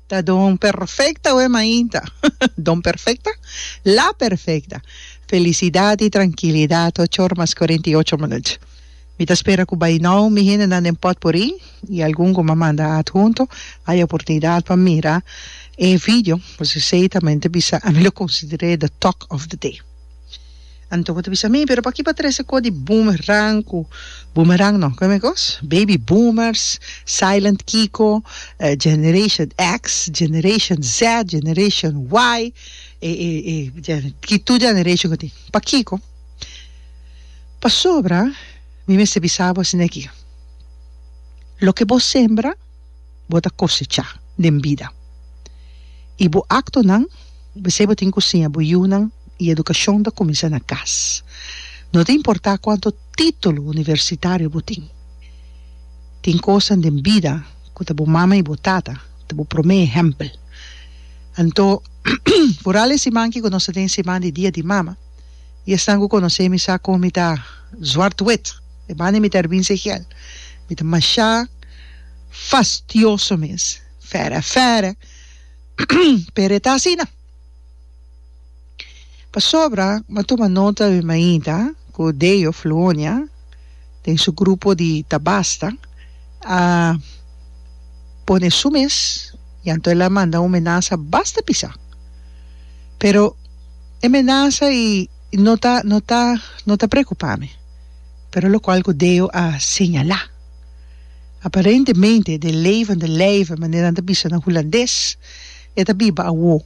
Ta don perfecta we mainta don perfecta la perfecta felicidad y tranquilidad ocho ora mas cuarenta y ocho minuut mi ta spera cu bay now mi hendenan den potpourri y algun cu mi a manda adhunto haya oportunidad pa mira e video pues esey ta mente bisa ami lo consideré the talk of the day. Anto bo ta bisa mi, pero pa ki bo a trese kos di boomerang ku, boomerang no, kome kos? Baby boomers, silent kiko, generation X, generation Z, generation Y, e e e ki tur generation ku tin. Pakiko? Pasobra mi mester bisa bo asin'eki, loke bo sembra. bo ta kosechá den bida. I bo aktonan, p'esei bo tin ku siña bo yunan i edukashon ta kuminsá na kas, no ta importá kuantu título universitario bo tin. Tin kosnan den bida ku ta bo mama i bo tata ta bo promé ehèmpel. Anto, kural e siman ki ku nos ta den Siman di Dia di Mama, i esnan ku konosé mi sa kon mi ta zwart wit. E manda mi ta arbin si hiel. Mi ta mashá fastioso mes. Fere, fere. Pero e ta asina. Pasobra mi a tuma nota di mainta ku Deo Fluonia den su grupo di Ta Basta a pone su mes i anto el a manda un menasa basta pisá. Pero e menasa i no ta, no ta, no ta preokupá mi. pero lokual ku Deo a señalá. Aparentemente de levende lijven, manera nan ta bisa na hulandes, e ta biba awo,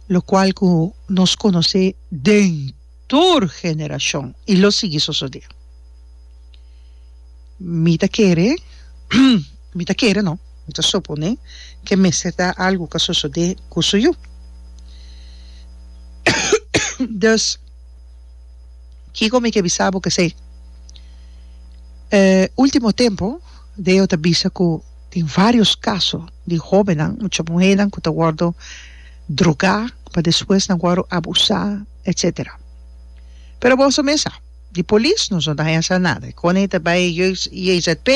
lokual ku nos konos'é den tur generashon i lo sigui sosodé. Mi ta kere, mi ta kere no, mi ta soponé ku e mester ta algu ku a sosodé ku su yu. Dus. Kiko mi ke bisa bo kesei? E ultimo tempu Deo ta bisa ku tin vários kaso di hóbennan, mucha muhénan ku ta wòrdu drogá pa despues nan wòrdu abusá, etsetera. Pero boso mes sa, di polis nos no ta haya sa nada. Kone i ta bai JZP,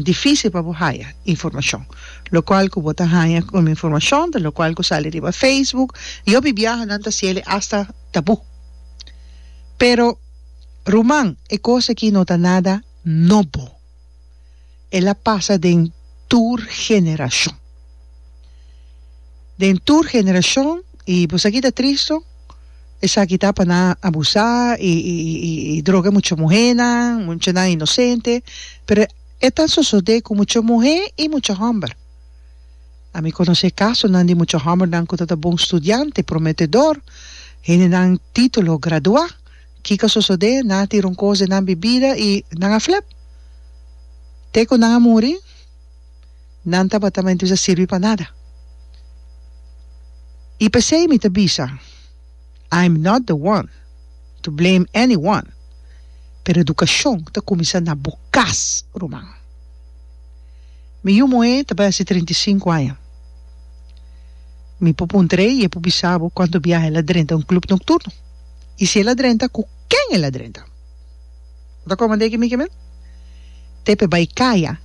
difísil pa bo haya informashon. Lokual ku bo ta haña un informashon ta lokual ku sali riba Facebook. Yòbi biaha nan ta sieli asta. tabú. Pero, ruman, e kos akí no ta nada nobo. El a pasa den tur generashon. Den tur generashon, i bo sa kita tristu, esaki ta pa nan abusá i droga e mucha muhénan, muchanan inosente. Pero e ta sosodé ku mucha muhé i mucha hòmber. A mi conoce casonan di mucha hombernan cu ta ta bon studiante, prometedor, hendenan titulo, gradua. Kico a sosode? Nan a tira un cos den nan bibida y nan a flep. Te cu nan a muri, nan tabatamenti bisa sirbi pa nada. Y p'esey mi ta bisa. I'm not the one to blame anyone, pero edukashon ta kuminsá na bo kas, ruman. Mi yu muhé ta bai hasi trinta i sinku aña. Mi por puntr'é i e por bisa bo kuantu biaha el a drenta un klub nokturno, i si el a drenta ku ken el a drenta. Bo ta komand'é ki mi ke men? Te p'e bai kaya,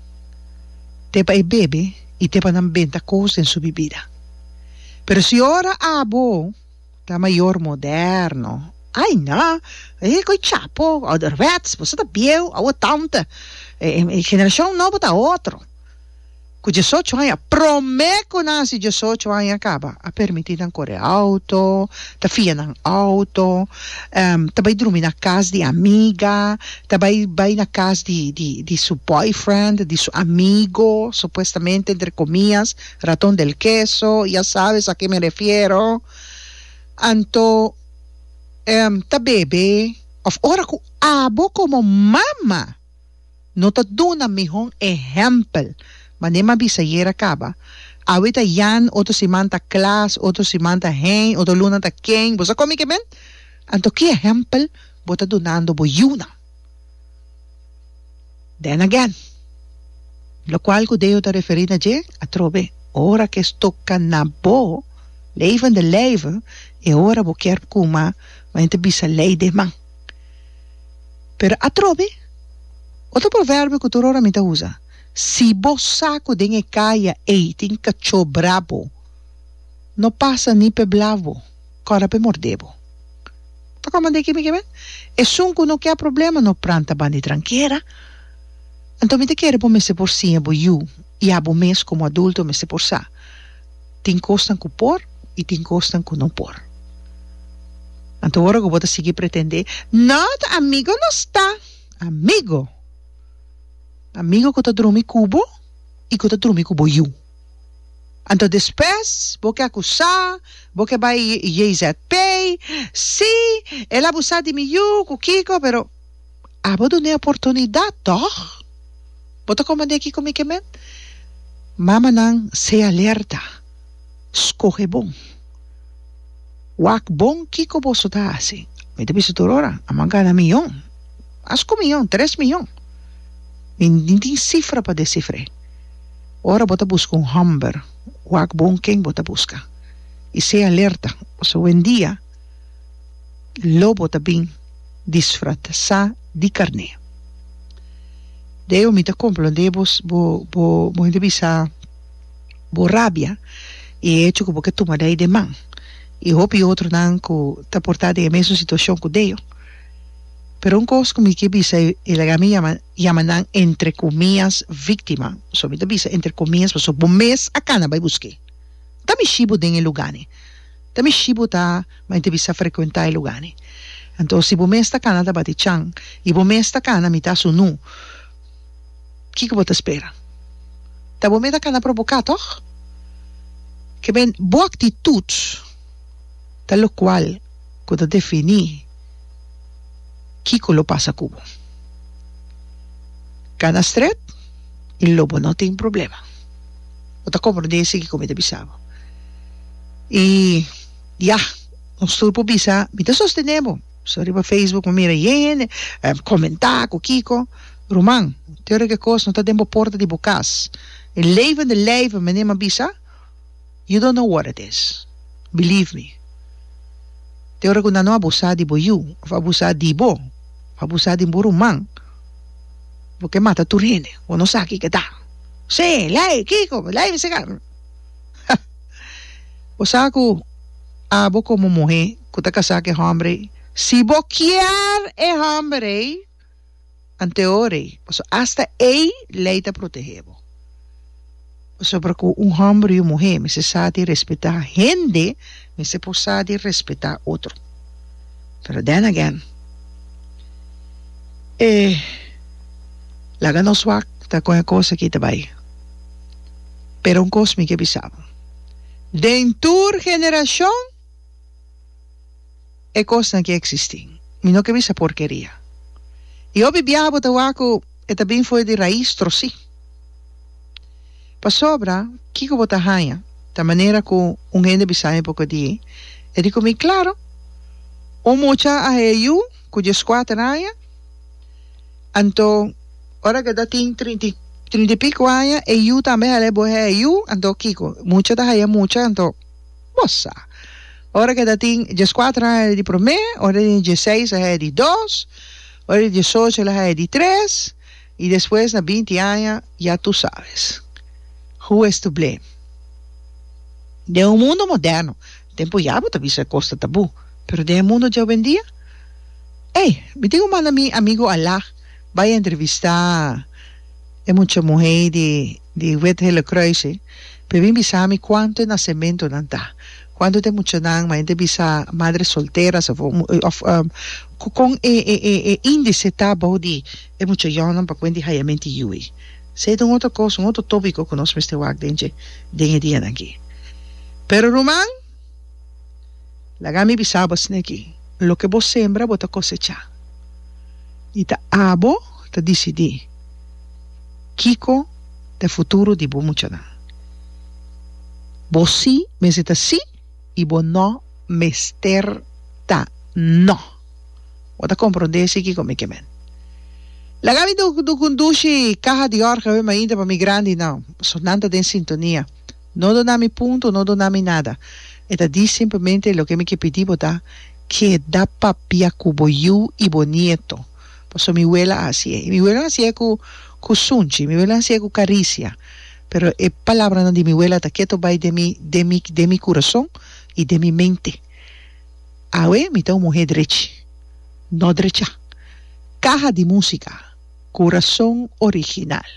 te pa e bebe i te pa nan benta kos den su bibida. Pero si ora abo ta mayor moderno, ay no, e koe chapo, ouderwets, boso ta bieu, oud tante, e generacion nobo ta otro. Cu diesocho aña, prome cu nan hasi diesocho aña caba, a permiti nan core auto, ta fia nan auto, ta bay drumi na cas di amiga, ta bay bay na cas di di di su boyfriend, di su amigo, supuestamente entre comias. Raton del keso, ya sabes a ke mi refiero. Anto, em, ta bebe of ora ku abo komo mama no ta duna mihon ehèmpel, mané m'a bisa ayer a kaba. Awe ta Jan, otro siman ta Klaas, otro siman ta Hein, otro luna ta Kein, bo sa komi ke men? Anto ki ehèmpel bo ta dunando bo yunan? Then again, lokual ku Deo ta referí na dje atrobe, ora ku es toka na bo, levende leive, e ora bo kier kuma, bo henter bisa lei den man. Pero atrobe, otro proverbio ku tur ora mi ta usa, si bo sa ku den e kaya ei tin kachó brabo, no pasa ni p'e blaf bo. Kòrda p'e mordé bo. Ta kòmand'é e kimi kebé? Esun ku no kè problema no pranta bandi trankera. Anto mi ta kere bo mester por siña bo yu i abo mes komo adulto mester por sa. Tin kosnan ku por i tin kosnan ku no por. Anto ora ku bo ta sigui pretendé not amigo no sta amigo. Amigo ku ta drumi ku bo i ku ta drumi ku bo yu. Anto despues bo ke akusá, bo ke bai JZP, sí, el abusá di mi yu, ku kiko, pero abo dun'é oportunidat tòg? Bo ta komand'é kiko mi ke men? Mamanan se alerta, skohe bon, wak bon kiko boso ta hasi. Mi ta bisa tur ora, amo a gana miyon, mas ku miyon, tres miyon, mi ni tin sifra pa desifr'é. Ora bo ta buska un hòmber, wak bon ken bo ta buska i sea alerta, pasobra wendia lobo ta bin disfratsá di karné. Deo mi ta komprondé bo bo bo hende bisa bo rabia i e hecho ku bo ke tuma dai den man i hopi otronan ku ta portá den e mesun situashon ku Deo. Pero un kos ku mi ke bisa e laga mi yama. Yama nan entre comias victima, so mi ta bisa entre comias paso bo mes a cana bay busque. Ta mishi bo den e lugani, ta mishi bo ta bay te bisa frecuenta e lugani. Anto si bo mes ta cana ta bati chan y bo mes ta cana mi ta asu nu, kico bo ta spera? Ta bo mes ta cana provoca toch? Ke ben bo actitud ta locual cu ta defini. kiko lo pasa ku bo. Kana strèt i lo bo no tin problema. Bo ta komprondé si kiko mi ta bisa bo. I ya, nos tur por bisa, mi ta sostené bo. So riba facebook mi mira hende komentá ku kiko. Ruman, tur e kos no ta den bo porta di bo kas. E levende lijven, mi a bisa. You don't know what it is. Believe me. Te ora ku nan no abusá di bo yu òf abusá di bo òf abusá di bo ruman, bo ke mata tur hende. Bo no sa kiko ta. Sí, lei, kiko, lei mi siga. Ha! Bo sa ku abo komo muhé ku ta kasá ku e hòmber ei, si bo kier e hòmber ei. anteori pasobra hasta ei lei ta protehé bo pasobra ku un hòmber i un muhé mester sa di respetá hende mester por sa di respetá otro pero den again e laga nos wak ta kon e kos aki ta bai pero un kos mi ke bisa bo den tur generashon. E kosnan ke eksistí. Mi no ke bisa porkeria. I hopi biaha bo ta wak ku e ta bin fo'i di rais trosí. Pasobra kiko bo ta haña, ta manera ku un hende bisa mi poko die, e di ku mi, Klaro, un mucha a haya yu ku dieskuater aña, anto ora ke ta tin trinta i trinta i piko aña e yu tambe haya bo haya yu, anto kiko? Mucha ta haya mucha, anto Bo sa. Ora ke ta tin dieskuater aña e di promé, ora e tin dieseis aña e di dos, ora e tin diesocho aña e di tres, i despues na binti aña, ya tu sabes. Who is to blame? Den un mundo moderno, tempu ya bo ta bisa e kos ta tabú, pero den e mundo di awendia? Ey, mi tin ku manda mi amigu Alaa bai entrevistá e mucha muhé di. di Wet Hele Kruising, p'e bin bisa mi kuantu e nasementunan ta, kuantu ta e muchanan, mayormente e bisa madre solteras òf òf ku kon e e indise ta abou di e mucha yònan pa kuent di hayamenti yuwe. Sey ta un otro kos, un otro tópiko ku nos mester wak den dje den e dianan aki. Pero ruman, laga mi bisa bo asina aki, loke bo sembra bo ta kosechá i ta abo ta disidí. Kiko e futuro di bo muchanan? Bo sí mester ta sí i bo nò mester ta nò. Bo ta komprondé sí kiko mi ke men. Laga mi do do kundushi kaha di òrga awé mainta pa mi grandi nau. So nan ta den sintonia. No duna mi punto, no duna mi nada. E ta di simplemente loke mi ke pidi bo ta keda papia ku bo yu i bo nieto. paso mi wela a haci'e y mi wela a haci'e cu cu sunchi mi wela a haci'e cu caricia pero e palabranan di mi wela ta keto bay den mi den mi den mi curazon y den mi mente awe mi ta un muhe drechi no drecha caha di musica curazon original.